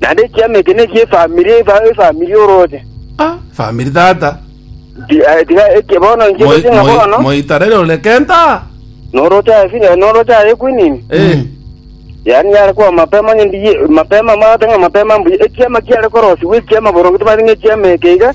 Naende ekiama eke nekie efamiri, efa- efamiri orooche. Ah, efamiri tata. Ti- eh, Tiga eke bono inche Moi- gochia ng'a moi- bono, moitarere ore kenta. norooche aye firi- eh, norooche aye ekwinini. Eh, Yaani yare kwa mapema onye ndiye, mapema, mwagoteba ng'a mapema mbuya. Ekiama kiare korosiwa ekiama boronge, tobwate ng'a ekiama eke iga,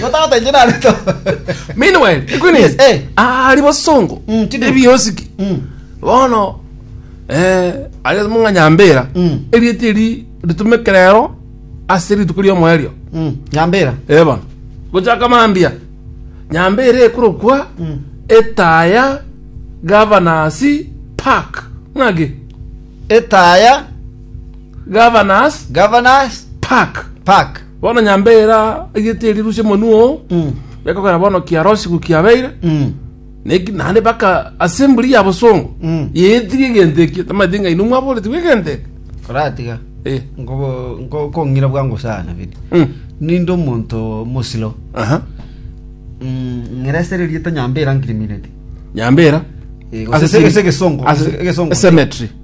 Gotagotenche nare to. Meanwhile, ekwene Yes, eh. ari bosongo. Mm, chidu. Ebiosiki. Mm. Bono eh ari mung'a nyambera. Mm. Erieti eri ritumeke rero ase rituko ria omoerio. Mm. Nyambera. Eh bono. Gochaka mambia. Nyambera ekorokwa Mm. etaya governors park. Ng'aki? Etaya Governors governors park. park. Bono nyambe ere aigete erirusia omonwa oo, bekogera bono kiarosiku kiabeire, neki naende baka asemburi y'abasongo yaetigia egento ekio, tamanyeti ng'a inwe mwaboretigwe egento eke. Oratiga Eh. nkobo- nko- nkong'ira bwango sana biri Mm. ninde omonto mosiro Aha. Mm, ng'ira ase ererieta nyambera nkirimineti Nyambera. Eh, gose ase- ase egesongo, Ase- ase egesongo. ase cemetery.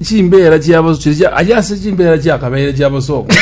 Chimbeera chiabo chiri chia- aye ase chimbeera chiakabeire chiabosongwa.